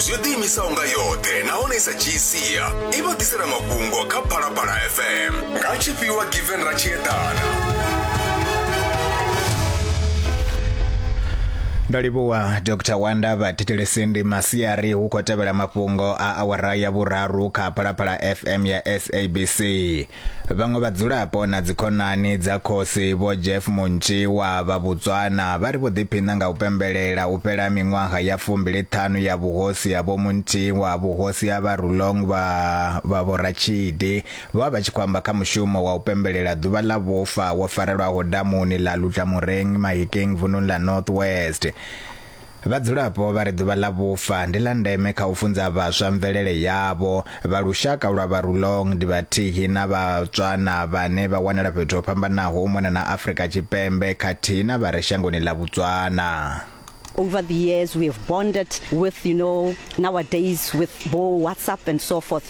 zwi ḓiimisaho nga yoṱhe nahone i sa dzhii sia i vha ḓisela mafhungo kha phalaphala fm nga tshifhiwa given ra tshi eḓana ndo livhuwa dr wanda vha thetshelesi ndi masiari hu khou tevhela mafhungo a awara ya vhuraru kha phalaphala fm ya sabc Vhaṅwe vhadzulapo na dzikhonani dza khosi Vho Jeff Muntshi wa vha Botswana vha ri vho ḓiphiṋa nga u pembelela u fhela miṅwaha ya fumbili ṱhanu ya vhuhosi ha Vho Muntshi wa vhuhosi ha vha Rulong vha vha Vho Ratshidi vha vha tshi khou amba kha mushumo wa u pembelela ḓuvha ḽa vhufa wo farelwaho damuni ḽa Lutlamoreng Mahikeng vununi ḽa North West. Vhadzulapo vha ri ḓuvha ḽa vhufa ndi ḽa ndeme kha u funza vhaswa mvelele yavho. Vha lushaka lwa vha Rulong ndi vhathihi na vha Tswana vhane vha wanala fhethu ho fhambanaho u mona na Afrika Tshipembe khathihi na vha re shangoni ḽa Botswana. over the years we have bonded with you know nowadays with bo WhatsApp and so forth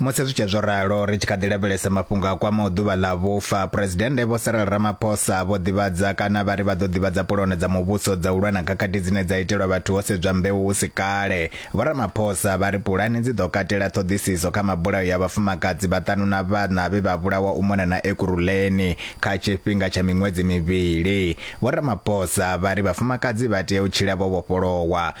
Musi zwi tshee zwo ralo, ri tshi kha ḓi lavhelesa mafhungo a kwamaho ḓuvha ḽa vhufa, Phresidennde Vho Cyril Ramaphosa vho ḓivhadza kana vha ri vha ḓo ḓivhadza pulono dza muvhuso dza u lwa na khakhathi dzine dza itelwa vhathu ho sedzwa mbeu hu si kale. Vho Ramaphosa vha ri pulane dzi ḓo katela ṱhoḓisiso kha mabulayo ya vhafumakadzi vhaṱanu na vhaṋa vhe vha vhulawa u mona na Ekurhuleni kha tshifhinga tsha miṅwedzi mivhili. Vho Ramaphosa vha ri vhafumakadzi vha tea u tshila vho vhofholowa,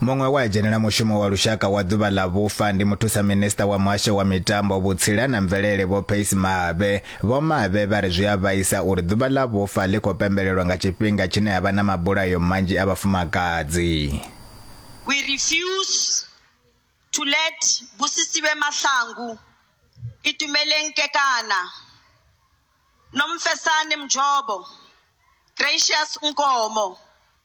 Muṅwe we a dzhenela mushumo wa lushaka wa ḓuvha ḽa vhufa ndi muthusa minisiṱa wa muhasho wa mitambo vhutsila na mvelele vho Pace Mabe. Vho Mabe vha ri zwi a vhaisa uri ḓuvha ḽa vhufa ḽi khou pembelelwa nga tshifhinga tshine ha vha na mabulayo manzhi a vhafumakadzi. We refuse to let Busisiwe Mahlangu, Itumeleng Kekana, Nomfesane Mjobo, Gracious Nkomo,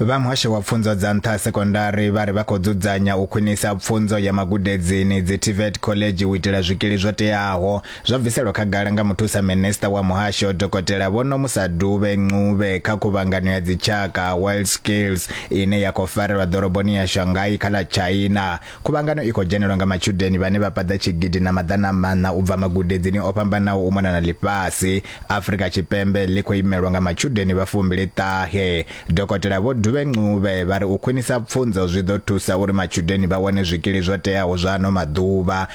Vha Muhasho wa Pfunzo dza Nṱha ha Sekondari vha ri vha khou dzudzanya u khwinisa pfunzo ya magudedzini, dzi TVET khoḽedzhi u itela zwikili zwo teaho, zwo bviselwa khagala nga Muthusa Minisiṱa wa Muhasho, Dokotela Vho Nomusa Dube Ncube kha Khuvhangano ya Dzitshaka, World Skills, ine ya khou farelwa ḓoroboni ya Shanghai kha ḽa China. Khuvhangano i khou dzhenelwa nga matshudeni vhane vha paḓa tshigidi na maḓana a maṋa u bva magudedzini o fhambanaho u mona na ḽifhasi. Afrika Tshipembe ḽi khou imelwa nga matshudeni vha fumbili ṱahe. Dokotela Vho Dube Ncube vha ri u khwinisa pfunzo zwi ḓo thusa uri matshudeni vha wane zwikili zwo teaho zwa ano maḓuvha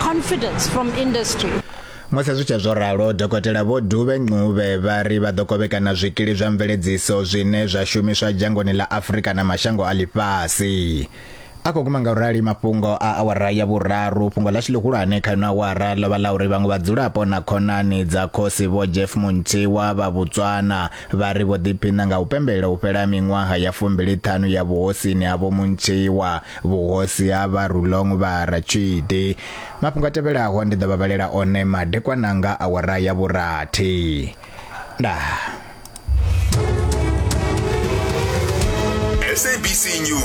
confidence from industry. Musi zwi tshe zwo ralo, dokotela Vho Dube Ncube vha ri vha ḓo kovhekana zwikili zwa mveledziso zwine zwa shumiswa dzhangoni ḽa Afrika na mashango a ḽifhasi. A khou guma nga u rali mafhungo a awara ya vhuraru, fhungo ḽa tshilihulwane kha ino awara ḽo vha ḽa uri vhaṅwe vhadzulapo na khonani dza khosi Vho Jeff Muntshiwa vha Botswana Vha ri vho ḓiphiṋa nga u pembelela u fhela ha miṅwaha ya fumbili-ṱhanu ya vhuhosini ha Vho Muntsheiwa, vhuhosi ha Vha Rulong Vha Ratshidi. Mafhungo a tevhelaho ndi ḓo vha vhalela one madekwana nga awara ya vhurathi. Ndaa. SABC News.